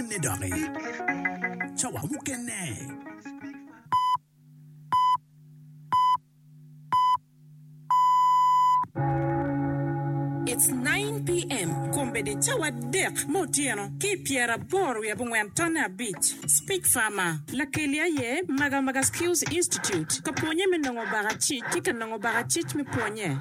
mukene dok i cawa mukene. It's 9 pm kombeddi cawa dek me otyeno ki i pyera aboro wiye abongwen tonne abic. Speak Farmer. Lakeli aye Magamaga Skills Institute ka pwonye me nongo baka cic ki ka nongo baka cic me pwonye.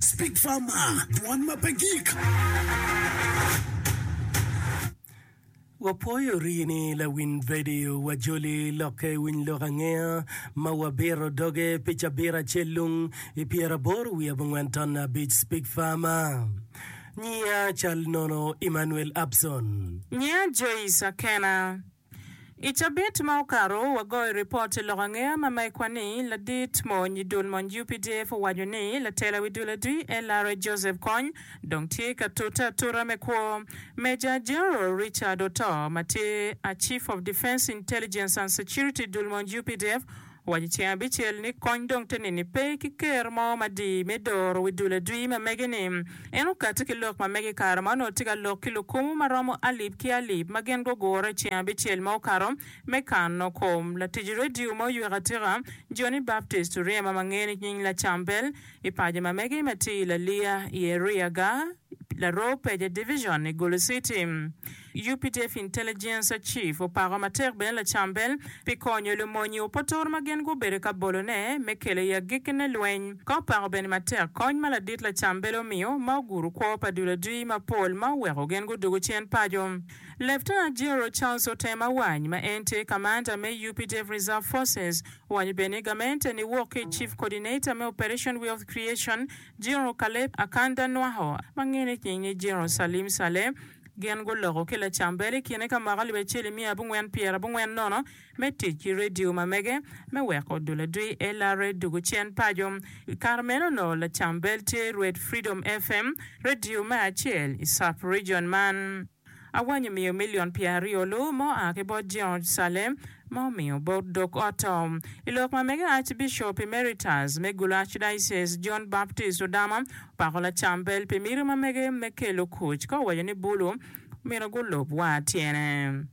Speak Farmer, dwan ma pe gik. Wapwoyo rini lawiny vedio wa joli lokke winy lok angeya ma wa biro doge pi cabit acel lung i pyera aboro wiye abongwen ton abic Speak Farmer Nyiya cal nono Emmanuel Abson. Nyiya Joyce Akena. I cabit ma okato, wagoyo ripot i lok ange ma ma ikwa ni, Ladit mony i dul mony UPDF owaco ni latela wi dul adwi LRA Joseph Kony dong tye ka tute atuta me kwo. Major General Richard Otoo ma tye a Chief of Defence Intelligence and Security i dul mony UPDF, Wa i ceng abicel ni kony dong te nini pe ki ker mo madii me doro wi dul adwi ma mege ni en okati ki lok ma mege ikare ma onongo tye ka lok ki lukumu ma romo alip ki alip ma gin gugure i ceng abicel ma okato me kano kom latic radio ma oywek atika Johnny Baptist Oryema ma nge ni nying Lacam Bell i paco ma mege ma tye i Laliya i Eriaga Laroo Peja Division i Gulu City. Updf Intelligence Chief opako matek bene Lacam Bell pi konyo lumony i Opotor ma gin gubedo ka bolone me kelo i agikkine lweny, ka opako bene matek kony ma ladit Lacam Bell omiyo ma oguro kwo pa dul adwi mapol ma oweko gin gudwogo cen paco. Lieutenant General Charles Otem Awany ma en tye Kamanda me Updf Reserve Forces owanyo bene ni gamente ni wok ki i Chief Coordinator me Operation Wealth Creation General Caleb Akanda Nwaho ma ngene nying ni General Salim Saleh, Gin guloko ki lacambel i kine ka moko alip acel i miya abongwen pyera abongwen nono me tic ki redio ma mege me weko dul adwi LRA dugu cen paco. I kare meno onongo lacambel tye Red Freedom FM, redio me acel i Sub Region man. Awany omiyo milion pyera aryo lu ma oa ki bot George Sale ma omiyo bot dog ot to. I lok ma mege Archbishop Emeritus me Gulu Archdiocese John Baptist Odama Pako Lacambel pi miti ma mege me kelo kuc ka owaco ni bulu omyero gulub wa tyene.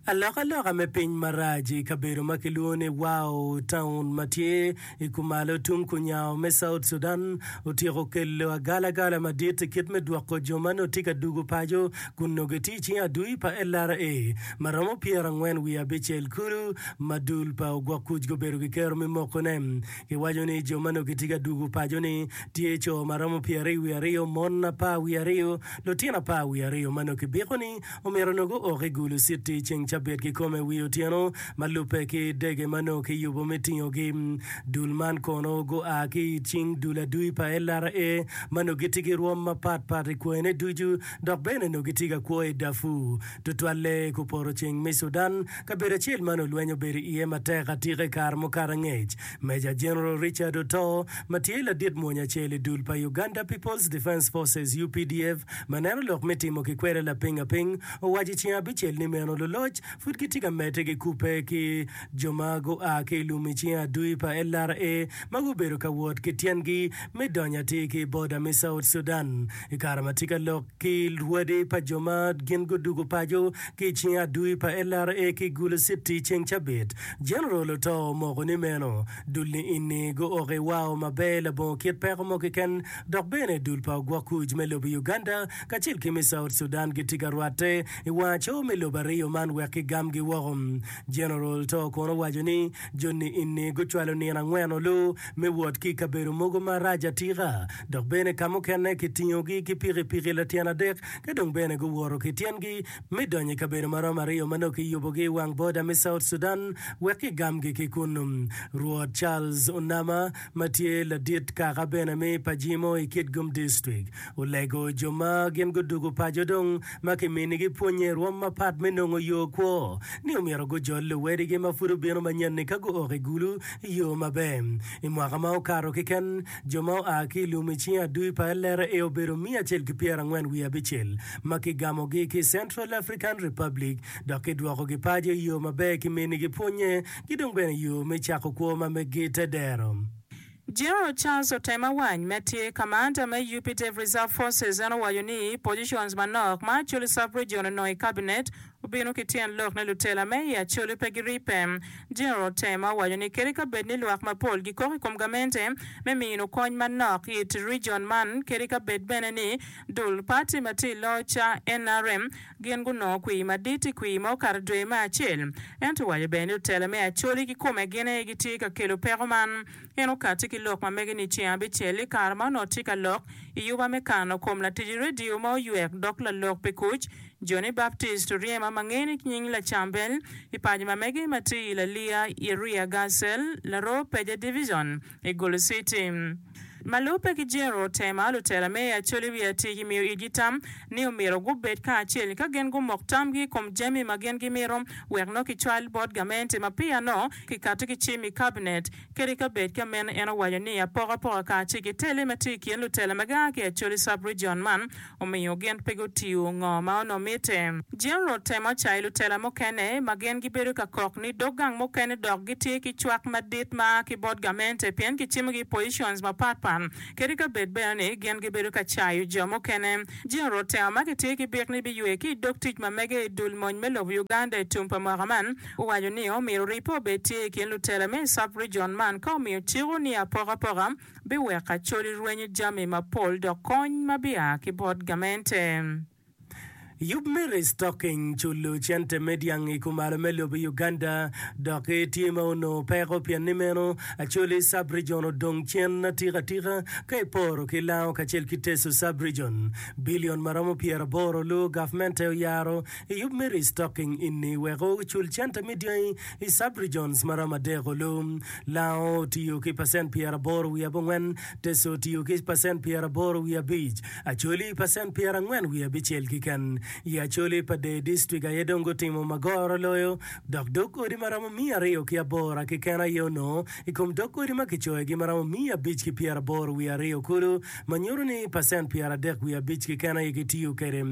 Alokaloka me piny marac i kabedo ma kilwongo ni Wau Taun ma tye i kumalo tung kunyango me South Sudan otyeko kelo agalagala madit i kit me dwoko jo ma nongo tye ka dugo paco kun nongo gitye i cing adui pa LRA ma romo pyerangwen wiye abicel kulu ma dul pa ogwok kuc gubedo gikero me mokone Giwaco ni jo ma nongo gitye ka dwogo paco ni tye co ma romo pyeraryo wiye aryo, mon apar wiye aryo, lutino apar wiye aryo ma nongo kibiko ni omyero nongo guok i gulu citi ceng Cabit kikome wi otyeno ma lubbe ki dege ma nongo kiyubo me tingogi. Dul man kono gua ki i cing dul adui pa LRA ma nongo gitye ki rwom mapat pat i kwayone ducu dok bene nongo gitye ka kwo i Darfur, tutwalle ku poto ceng me Sudan. Kabedo acel ma nongo lweny obedo iye matek atika i kare mukato angec, Meja Jeneral Richard Otoo, ma tye ladit mwonya acel i dul pa Uganda People's Defence Forces, UPDF, ma neno lok me timo kikwele lapingaping, owaco i ceng abicel ni meno luloc pud gitye ka medde ki kubbe ki jo ma gua ki i lum i cinge adui pa LRA ma gubedo ka wot ki tyengi me donyo atir ki i boda me South Sudan. I kare ma tye ka lok ki lwadi pa jo ma gin gudwogo paco ki i cinge adui pa LRA ki i Gulu Citi i ceng cabit, Jeneral Otoo omoko ni meno dul ni eni go oko i wao maber labongo kit peko mo keken dok bene dul pa ogwok kuc me lobo Uganda kacel ki me South Sudan gitye ka rwatte i wang acowo me lobo aryo man wek ki gam gi woko. Jeneral Otoo kono owaco ni jo ni eni gucwalo nino angwen olu me wot ki i kabedo mogo marac atika, dok bene ka mukene kitingogi ki pikipiki latyen adek ka dong bene guwoto ki tyengi me donyo i kabedo ma romo aryo ma nongo kiyubogi i wang boda me South Sudan wek kigamgi ki kunnu. Rwot Charles Onama, ma tye ladit kaka bene me Pajimo i Kitgum District, olego jo ma gin gudugu paco dong ma kiminigi pwonye i rwom mapat me nongo yo kwo, ni omyero gujol luwedigi ma pud obino manyen-ni ka guok i gulu i yo maber. I mwaka ma okato keken, jo ma oa ki i lum i cing adui pa LRA obedo miya acel ki pyera angwen wiye abicel, ma kigamogi ki i Central African Republic dok kidwokogi paco i yo maber kiminigi pwonye ki dong bene yo me cako kwo ma meggi te dero. General Charles Otaemawany ma tye Kamanda me Updf Reserve Forces en owaco ni positions manok ma Acholi Sub-Region onongo i Cabinet obino ki tyen lok ni lutela me i Acholi pe giripe. General Otaema owaco ni kadi ka bed ni lwak mapol gikok i kom gamente me mino kony manok it region man kadi ka bed bene ni dul party ma tye i loc ca nrm Gin gunongo kwir madit i kwir ma okato dwe me acel. Ento owaco bene ni otela me Acholi kikome gin aye gitye ka kelo peko man. En okatti ki lok ma mege ni ceng abicel i kare ma onongo tye ka lok i yuba me kano kom latic redio ma oywek dok lalok pi kuc, Johnny Baptist Oryema ma ngeye ni nying Lacambel, i paco ma mege ma tye i Lalia, Iria Gassel, Laroo Peja Division. I Gulu City ma lubbe ki Jero Tema, lutela me i Acholi wiye atir gimiyo itgi tam ni omyero gubed kacel ka gin gumok tamgi i kom jami ma gin gimito wek nongo kicwal bot gamente ma peya nongo kikato ki cim i Kabinet. Kadi ka bed ka meno, en owaco ni apokapoka kacel ki tele ma tye i kin lutela ma gia ki Acholi Sub-rijion man omiyo gin pe gutiyo ngo ma onongo mitte. General temo cayo lutela mukene ma gin gibedo ka kok ni dog gang mukene dok gitye ki cwak madit ma a ki bot gamente pien kicimo gi i positions mapat pat kadi ka bed bene ni gin gibedo ka cayo jo mukene. General temo ma kitye ki byek ni biywe ki i dog tic ma mege i dul mony me lobo Uganda i tum pa mwaka man owaco ni omyero ripe obed tye i kin lutela me i sub-region man ka omiyo ciko ni apokapoka biweko acholi rwenyo jami mapol dok kony ma bia ki bot gamente. Yub me restocking culo cente me dyang i kumalo me lobo i Uganda dok tye ma onongo peko pien ni meno acholi sub-region odong cen atika atika ka iporo ki Lango kacel ki Teso sub-region. Billion ma romo pyeraboro luwo gavmente oyaro Iyub me restocking ini wek ocul cente me dyangi i sub-regions ma romo adek olu. Lango otiyo ki pacent pyeraboro wiye abongwen, Teso otiyo ki pacent pyeraboro wiye abic, Acholi pacent pyerangwen wiye abicel kiken. I Acholi pa Dei District aye dong gutimo ma goro loyo dok dog odi ma romo miya aryo ki abora kiken aye onongo i kom dog odi ma kicoyogi ma romo miya abic ki pyeraboro wiye aryo kulu ma nyuto ni pacent pyeradek wiye abic kiken aye gitiyo kwede.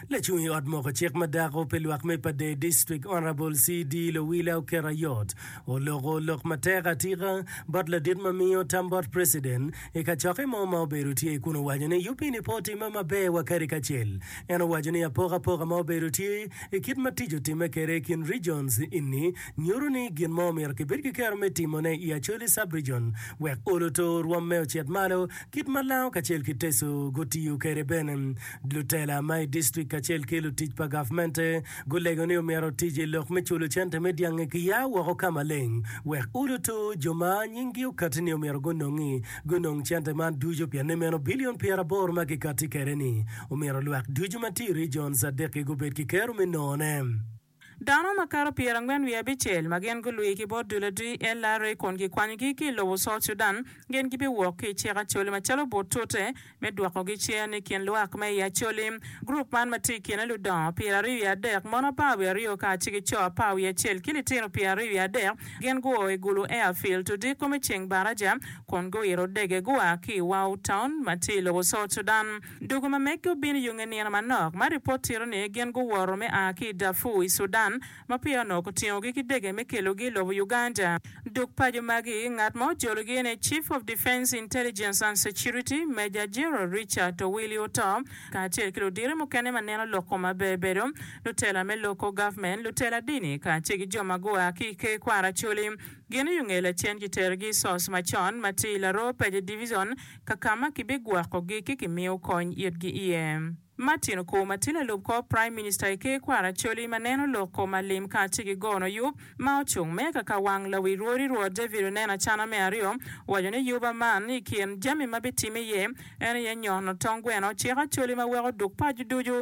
Lacung i ot moko cik ma dako pi lwak me Padee District Honourable CD Lowila oketo ayot oloko lok matek atika bot ladit ma miyo tam bot President i kacokke mo ma obedo tye kun owaco ni yubini pe otimme maber wa kadi kacel. En owaco ni apokapoka ma obedo tye i kit ma tic otimme kede i kin regions ini nyutu ni gin mo omyero kibed ki kero me timo ne i Acholi Subregion wek olo to orwom me ocit malo kit ma lango kacel ki Teso gutiyo kede bene Lutela ma i distrik kacel ki lutic pa gavmente gulego ni omyero otic i lok me culo cente me dyangi ki ya woko ka maleng wek uluto jo ma nyinggi okatti ni omyero gunongi gunong cente man ducu pienni meno bilion pyeraboro ma kikatti kwede ni omyero lwak ducu ma tye i rijon Zadeki gubed ki kero me nongone. Dano makato pyerangwen wiye abicel ma gin gulwir ki bot dul adwi, LRA, kun gikwanyogi ki i lobo South Sudan, gin gibiwok ki i cik Acholi macalo but tute me dwokogi cen i kin lwak ma i Acholi. Gurup man ma tye i kine ludongo pyeraryo wiye adek, mon apar wiye aryo kacel ki co apar wiye acel ki litino pyeraryo wiye adek, gin guo i Gulu Airfield odiko me ceng baraja kun guiro dege gua ki i Wau Town ma tye i lobo South Sudan. Doko ma meggi obino i yunge nino manok, ma ripot tito ni gin guwoto me a ki i Darfur i Sudan ma peya onongo kitingogi ki dege me kelogi i lobo Uganda. Dok paco magi, ngat ma ojologi en aye Chief of Defence Intelligence and Security, Major General Richard Owili Oto, kacel ki ludito mukene ma neno lok kome aber bedo, lutela me Local Government, lutela dini, kacel ki jo ma gua ki i Ker Kwara Acholi. Gin oyunge lacen kiterogi i SOS macon ma tye i Laroo Paje Division, ka ka ma kibigwokogi ki kimiyo kony itgi iye. Martin Okur ma tye lalub kor Praim Minista i Ker Kwara Acholi ma neno lok kom ma lim kacel ki gono yub ma ocung me ka ka wang lawi rwodi Rwot David Oneno Acana me aryo owaco ni yuba man i kin jami ma bitimme iye en aye nyono tong gweno cik Acholi ma weko duk paco ducu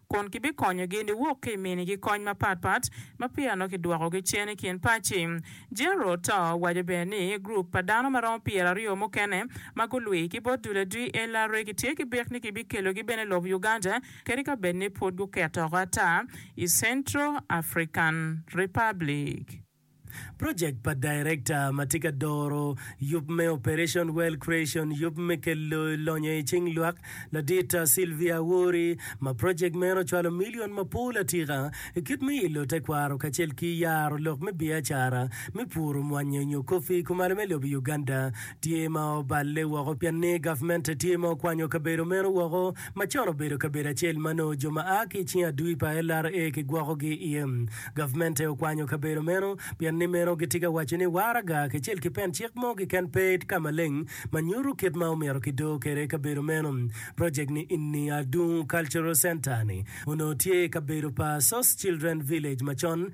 kun kibikonyogi niwok ki i minigi kony mapat pat ma peya nongo kidwokogi cen i kin pacci. Gerald to owaco bene ni gurup pa dano ma romo pyeraryo mukene ma gulwi ki bot dul adwi LRA gitye ki bik ni kibikelogi bene i lobo Uganda kadi ka bed ni pud guket oko ata i Central African Republic. Project pa Director ma tye ka doro yub me Operation Wealth Creation, yub me kelo lonyo i cing lwak, Ladit Sylvia Awori, ma project meno ocwalo milion mapol atika i kit me ilo tekwaro kacel ki yaro lok me biacara me puro mwanya nyo coffee i kumalo me lobo i Uganda tye ma oballe woko pienni gavmente tye ma okwanyo kabedo meno woko ma con obedo kabedo acel ma nongo jo ma a ki i cing adui pa LRA kigwokogi iye. Gavmente okwanyo kabedo meno pien ni meno gitye ka waco ni waraga kacel ki pen cik mo keken pe i ka maleng ma nyuto kit ma omyero kido kwede kabedo meno. Projek ni Inni Adungu Cultural Centre-ni onongo tye i kabedo pa Source Children Village macon,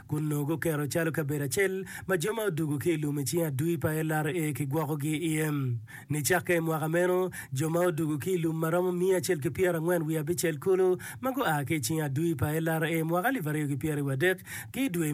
kun nongo guketo calo kabedo acel ma jo ma odwogo ki i lum i cing adui pa LRA kigwokogi iye. Nicakke i mwaka meno, jo ma odwogo ki i lum ma romo miya acel ki pyera angwen wiye abicel kulu ma gua ki i cing adui pa LRA mwaka alip aryo ki pyera wiye adek ki i dwe